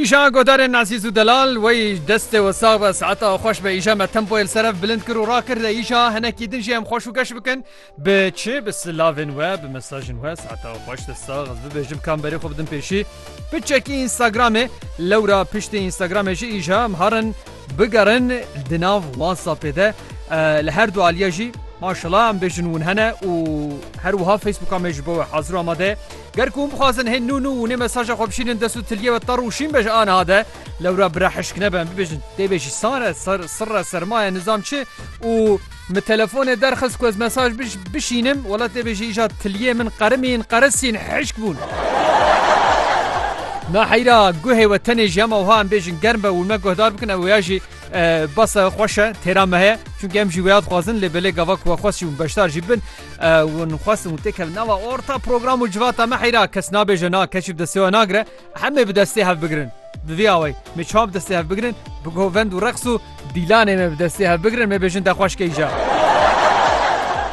Îşa godarên Nasîs û Delal wey destê we sax be saeta xweş be îşa me tempoyê li ser ev bilind kir û rakir de îşa hinekî din jî em xweş û geş bikin bi çi bi silavên we bi mesajên we saeta xweş de sax ez bibêjim kam berê xwe bidin pêşî bi çekî Instagramê lewra piştê Instagramê jî îşa em harin bigerin di nav WhatsAppê de li her du aliye jî maşela em bêjin hûn hene û her wiha Facebooka me ji bo we hazir amade Ger ku hûn bixwazin hên nû nû û nê mesaja xwe bişînin dest û tiliyê we terr û şîn be ji aniha de, lewra bira hişk nebe em bibêjin tê bê jî sar e, sar, sirr e, sermaye, nizam çi û min telefonê derxist ku ez mesaj bij, bişînim, wela tê bê jî îja tiliyê min qerimîn, qerisîn, hişk bûn. Na heyra guhê we tenê jî hema wiha em bêjin germ be û me guhdar bikin ew ya jî e, basa xweş e, têra me heye. Çunke em jî wêya dixwazin lê belê gava ku we xweş jî û beşdar jî bin. Hûn xwestin û têkevin nava orta program û civata me heyra kes nabêje na keşî bi destê we nagire hemê bi destê hev bigirin. Bi vî awayî me çawa bi destê hev bigirin bi govend û reqs û dîlanê me bi destê hev bigirin me bêjin te xweş keyja.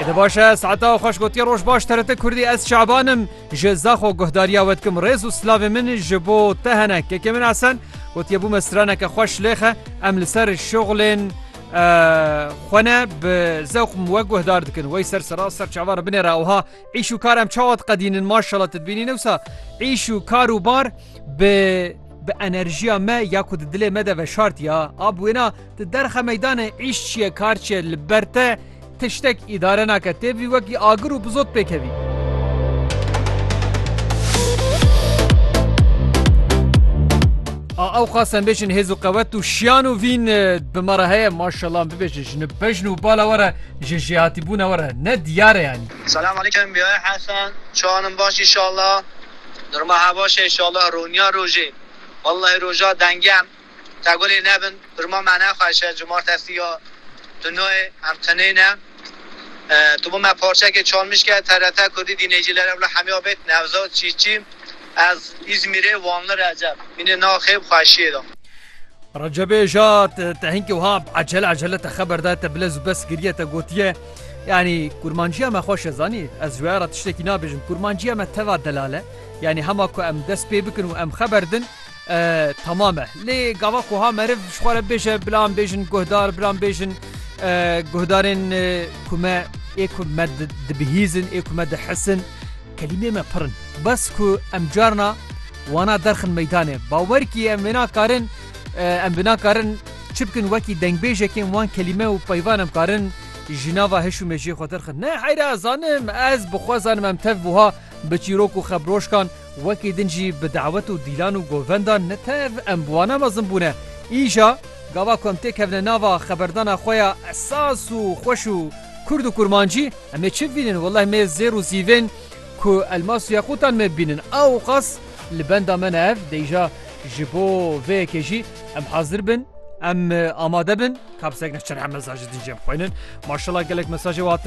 Êde baş e saeta û xweş gotiye roj baş TRT Kurdî ez Şaban im ji Zaxo guhdariya we dikim rêz û silavê min ji bo te hene kekê min Esen gotiye bûme straneke xweş lêxe em li ser şixulên xwe ne bi zewq min we guhdar dikin wey ser sera ser çava re binêra wiha îş û kar em çawa diqedînin maşala te dibînî newsa îş û kar û bar bi bi enerjiya me ya ku di dilê me de veşartiya a bi wêna di derxe meydanê îş çiye kar çiye li ber te Tiştek îdare nake tê vî wekî agir û bi zot pêkevî. A ew xasem bêjin hêz û qewet û şiyan û vîn bi me re heye maşallah bibêje ji bejn û bala we re ji jêhatîbûna we re ne diyar e yanî. Selam aleykum Biyay Hesen çawan in baş inşallah durma hevaş e inşallah roniya rojê wellahî roja dengem. Tevgulê nebin birma me nexweşe cumartesî ya tu nayê em tenêne tu bo me parçekê çalmîşke trt kurdî dînêcîler ewle hemya bêt nevzad çîçî ez îzmîrê wanli receb mînê naxê bi xweşîyê de. Recebê ja te hinkî wiha ecele ecele te xeber daye te bilez û bes giriye te gotiye yanî kurmancîya me xweş e zanî ez ji waya re tiştekî nabêjim kurmancîya me teva delal e yanî hema ku em dest pê bikin û em xeber din Tamam e. Lê gava ku ha meriv ji xwe re bêje bila em bêjin guhdar, bila em bêjin guhdarên ku me ê ku me dibihîzin, ê ku me dihisin. Kelîmeyê me pir in. Bes ku em carna wana derxin meydanê. Bawer kî em nakarin em bi nakarin çi bikin wekî dengbêjekên wan kelîme û peyvan em karin ji nava hiş û mejiyê xwe derxin. Ne heyra zanim ez bi xwe zanim em tev buha. Bi çîrok û xebroşkan wekî din jî bi dawet û dîlan û govendan ne tev em bi wana mezin bûne. Îja gava ku em tê kevine nava xeberdana xwe ya esas û xweş û kurd û kurmancî em ê çi vînin welleh mê zêr û zîvên ku elmas û yequtan me bînin awqas li benda me ne ev de îja ji bo vê yekê jî em hazir bin em amade bin. Kabsek ne çend mesaj din jê bixwînin. Maşallah gelek mesajê we hatine.